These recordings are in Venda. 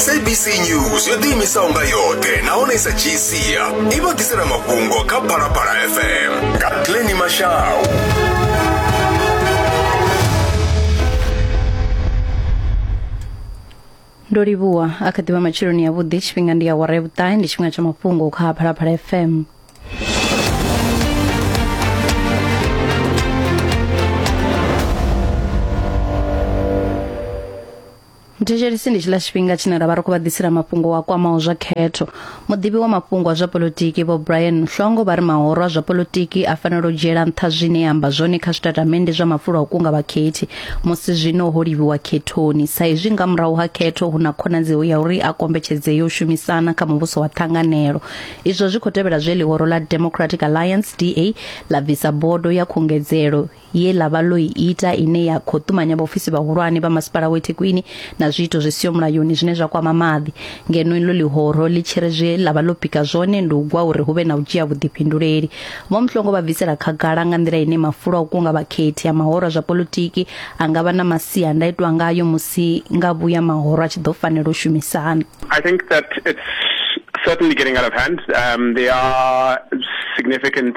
sabc news yo ḓiimisaho nga yoṱhe nahone i sa dzhii sia i vha ḓisela mafhungo kha phalaphala fm nga glenny mashau ndo livhuwa a kha ḓivha matsheloni yavhuḓi tshifhinga ndi ya wara ya vhuṱahe ndi tshifhinga tsha mafhungo kha phalaphala fm muthetshelesi ndi tshiḽa tshifhinga tshine ra vha ri khou vha ḓisela mafhungo wa kwamaho zwa khetho muḓivhi wa mafhungo a zwa politiki vho brian mhlongo vha ri mahoro a zwa politiki a fanela u dzhiela nṱha zwine ya amba zwone kha zwitatamennde zwa mafulo a u kunga vhakhethi musi zwino ho livhiwa khethoni sa izwi nga murahu ha khetho hu na khonadzeo ya uri a kombetshedze yo shumisana kha muvhuso wa ṱhanganelo izwo zwi khou tevhela zwe ḽihoro ḽa democratic alliance da ḽa bvisa bodo ya khungedzelo ye ḽa vha ḽo i ita ine ya khou ṱumanya vhaofisi vhahulwane vha masipala wa Thekwini na zwiito zwi siho mulayoni zwine zwa kwama maḓi ngeno iḽo ḽihoro ḽi tshi ri zwe ḽa vha ḽo pika zwone ndi u gwa uri hu vhe na u dzhia vhuḓifhinduleli vho Mhlongo vha bvisela khagala nga nḓila ine mafulo a u kunga vhakhethi a mahoro zwa politiki a nga vha na masiandaitwa ngayo musi nga vhuya mahoro a tshi ḓo fanela u shumisana I think that it's certainly getting out of hand um, there are significant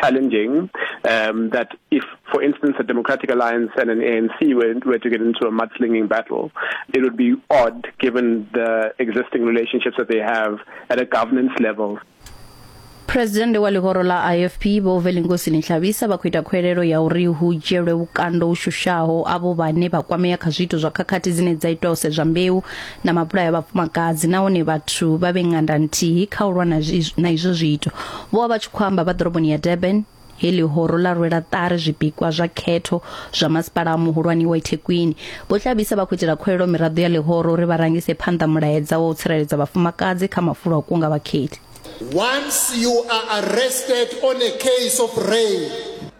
challenging um, that if, for instance, a Democratic Alliance and an ANC were, were to get into a mudslinging battle, it would be odd given the existing relationships that they have at a governance level. presidennde wa ḽihoro ḽa ifp vho velingosi nhlabisa vha khou ita khwelelo ya uri hu dzhielwe vhukando u shushaho avho vhane vha kwamea kha zwiito zwa khakhathi dzine dza itwa u sedzwa mbeu na mabulayo a vhafumakadzi nahone vhathu vha vhe nganda nthihi kha u lwa na zwi- na izwo zwiito vho vha vha tshi khou amba vha ḓoroboni ya durban he ḽihoro ḽa rwela ṱari zwipikwa zwa khetho zwa masipala a muhulwane wa ithekwini vho tlabisa vha khou itela khuwelelo miraḓo ya ḽihoro uri vha rangise phanḓa mulaedza wa u tsireledza vhafumakadzi kha mafulo a u kunga vhakhethi Once you are arrested on a case of rape,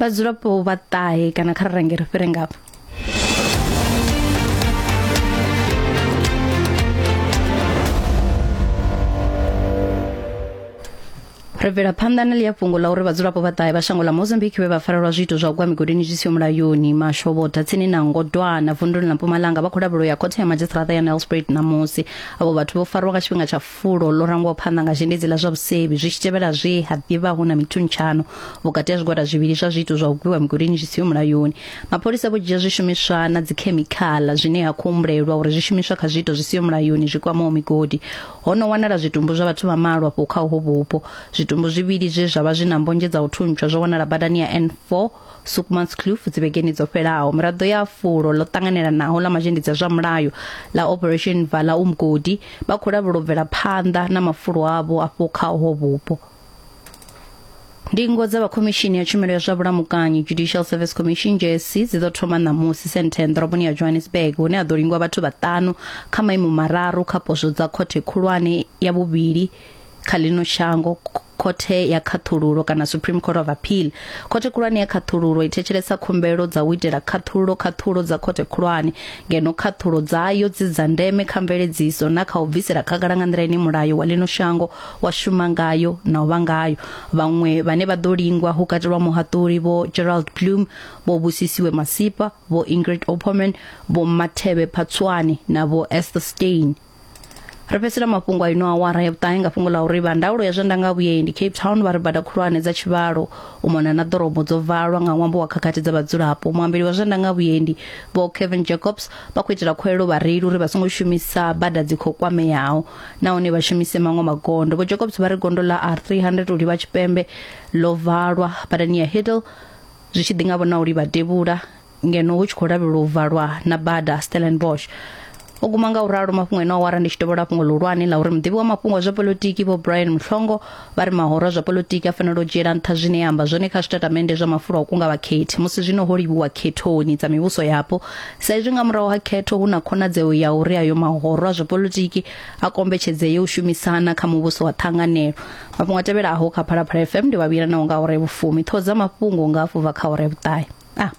vhadzulapo vha ṱahe kana kha ri range ri fhire ngafho ri bvela phanḓa na ḽi ya fhungo ḽa uri vhadzulapo vha ṱahe vha shango ḽa mozambique vhe vha farelwa zwiito zwa u gwa migodini zwi siho mulayoni mashobotha tsini na ngodwana vunduni ḽa mpumalanga vha khou lavhelwa ya khothe ya madzhisiṱiraṱa ya nelspruit ṋamusi avho vhathu vho farwa nga tshifhinga tsha fulo ḽo rangwaho phanḓa nga zhendedzi ḽa zwa vhusevhi zwi tshi tevhela zwe ha ḓivha hu na mithuntshano vhukati ha zwigwada zwivhili zwa zwiito zwa u gwiwa migolini zwi siho mulayoni mapholisa vho dzhia zwishumiswa na dzikhemikhala zwine ha khou humbulelwa uri zwishumiswa kha zwiito zwi siho mulayoni zwi kwamaho migodi ho no wanala zwitumbu zwa vhathu vha malo afho kha uho vhupo zwitumbu zwivhili zwe zwa vha zwi na mbonzhe dza u thuntsha zwo wanala badani ya N4 Soekmans Kloof dzi vhegeni dzo fhelaho miraḓo ya fulo ḽo ṱanganelanaho ḽa mazhendedzi a zwa mulayo ḽa Operation Vala Umgodi vha khou lavhela u bvela phanḓa na mafulo avho afho kha ho vhupo. Ndingo dza vha khomishini ya tshumelo ya zwa vhulamukanyi Judicial Service Commission JSC dzi ḓo thoma ṋamusi Sandton ḓoroboni ya Johannesburg hune ha ḓo lingwa vhathu vhaṱanu kha maimo mararu kha poswo dza khothe khulwane ya vhuvhili kha ḽino shango khothe ya khaṱhululo kana Supreme Court of Appeal khothe khulwane ya khaṱhululo i thetshelesa khumbelo dza u itela khaṱhululo khaṱhululo dza khothe khulwane ngeno khaṱhululo dzayo dzi dza ndeme kha mveledziso na kha u bvisela khagala nga nḓila ine mulayo wa lino shango wa shuma ngayo na u vha ngayo vhaṅwe vhane vha ḓo lingwa hu katelwa muhaṱuli vho Gerald Bloom vho Busisiwe Masipa vho Ingrid Opperman vho Mathebe Phatswane na vho Esther Stein ri fhedzisela mafhungo a ino awara ya vhuṱahe nga fhungo ḽa uri vha ndaulo ya zwa ndanga vhuendi cape town vha ri bada khulwane dza tshivhalo u mona na ḓorobo dzo valwa nga ṅwambo wa khakhathi dza vhadzulapo muambeli wa zwa ndanga vhuendi vho kevin jacobs vha khou itela khuelo vhareili uri vha songo shumisa bada dzi khou kwameaho nahone vha shumise maṅwe magondo vho jacobs vha ri gondo ḽa r 300 u livha tshipembe ḽo valwa badani ya hiddle zwi tshi ḓi nga vhona u livha devhula ngeno hu tshi khou lavhelwa u valwa na bada Stellenbosch o guma nga u ralo mafhungo ene awara ndi tshi dovhola fhungo ḽihulwane ḽa uri muḓivhi wa mafhungo a zwa polotiki vho brian muhlongo vha ri mahoro a zwa polotiki a fanela u dzhiela nṱha zwine ya amba zwone kha zwitatamennde zwa mafulo a u kunga vhakhethi musi zwino ho livhuwa khethoni dza mivhuso yapo sa izwi nga murahu ha khetho hu na khonadzeo ya uri ayo mahoro a zwa polotiki a kombetshedzee u shumisana kha muvhuso wa ṱhanganelo mafhungo a tevhelaho kha phalaphala fm ndi vhavhila naho nga ore vhufumi ṱhoho dza mafhungo nga afho bva kha ore vhuṱahe a ah.